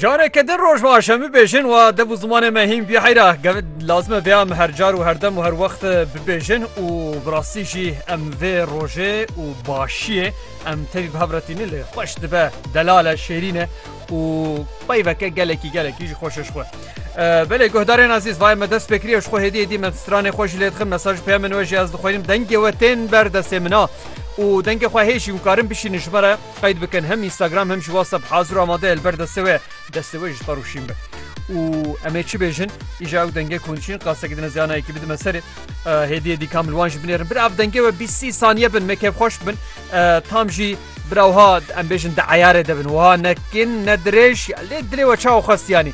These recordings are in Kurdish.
Careke din roj va şemî bêjin wa dev û zimanê me hîn bî heyra gevin lazime vê em her car û her dem û her wext bibêjin û bi rastî jî em vê rojê û başiyê em tevî bi hev re tînin lê xweş dibe delal e şêrîn e û peyveke gelekî gelekî jî xweş e ji xwe. Belê guhdarên ezîz vayê me dest pêkirî ew ji xwe hêdî hêdî me stranê xwe jî lê dixin mesaj peyamên we jî ez dixwînim dengê we tên ber destê min a û dengê xwe hê jî hûn karin bişînin ji me re Qeyd bikin hem Instagram hem jî WhatsApp hazir û amade ye li ber destê wê. Destê wê ji te rûşîn be. Û em ê çi bêjin? Îja ew dengê ku hûn dişînin qasek dine ziyanayekî bidime serê. Hêdiyê dî kam li wan jî binêrin. Bira ev dengê we bîst sî saniye bin me kêfxweş bin. Tam jî bira wiha em bêjin di eyarê de bin. Wiha ne kin ne dirêj lê dilê we çawa xwest yanî.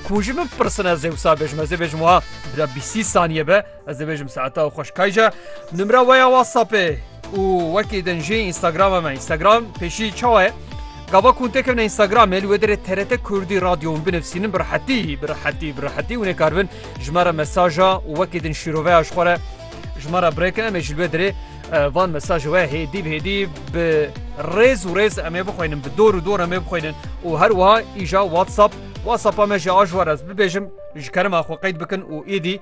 Ku hûn ji min bipirsin ez ê wisa bêjim ez ê bêjim wiha bira bîst sî saniye be. Ez dibêjim saeta û xweşkayja nimra we ya WhatsAppê û wekî din jî Instagrama me Instagram pêşî çawa ye? Gava ku têkevne Instagramê li wê derê TRT Kurdî radyo hûn binivîsînin bi rehetî bi rehetî bi rehetî hûn ê kar bin ji me re mesaja û wekî din şîroveya ji xwe re ji me re birêkin em ê ji li wê derê van mesajê we hêdî bi hêdî bi rêz û rêz em ê bixwînin bi dor û dor em ê bixwînin û her wiha îja WhatsApp WhatsAppa me jî a ji we re ez bibêjim ji kerema xwe qeyd bikin û êdî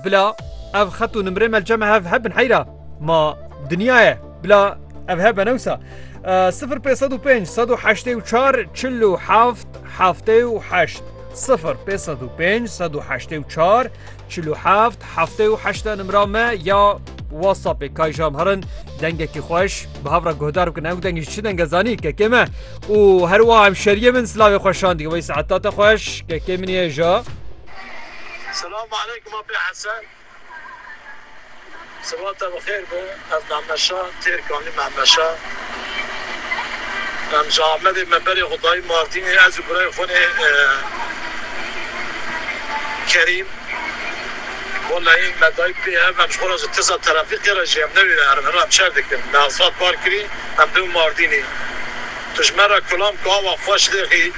Bila ev xet û nimrê me li cem hev hebin heyra ma dinya ye bila ev hebe newsa. 0505 184 47 78 0505 184 47 78 nimra me ya WhatsAppê kayjam herin dengekî xweş bi hevra guhdar bikin ew dengî çi denge zanî kekê me û herwa hemşeriye min silavê xweşan dî wê saeta te xweş kekê min ye ja. Selam aleykum Apê Hesen. Siba te bi xêr be. Ez Mehmet Şa têr Kanî Mehmet Şa. Em ji Amedê me berê xwe dayî Mardînê ez û birayê xwe nê Kerîm. Wellahî me dayî pê ev em ji xwe re ji tirsa terafîkê re jî em newêre herin herin em çer dikin. Me asfalt park kirî em dewin Mardînê. Tu ji me re kulam ku awa xweş lê xî.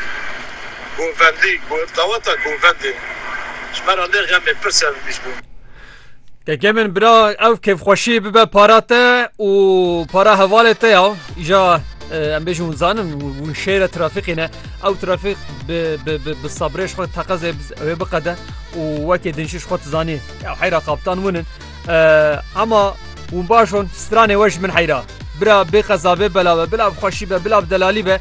Govendî, Daweta Govendê ji me re lê xemê pir serbîst bû. Kekê min bira ew kêfxweşî bibe para te û para hevalê te ya. Îja em bêjin hûn zanin hûn şêre trafîqî ne. Ew trafîq bi sabrê ji xwe teqezê wê biqede û wekê din jî ji xwe dizanî ya heyra kaptan hûn in. Hema hûn baş hûn stranê we ji min heyra. Bira bê qeza bê bela be bila bi xweşî be bila bi delalî be.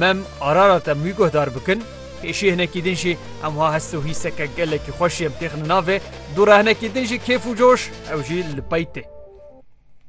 Mem Ararata mî guhdar bikin, pêşî hinekî din jî em wiha hest û hîseke gelekî xweş jê em têxine navê, dû re hinekî din jî kêf û coş ew jî li pey tê.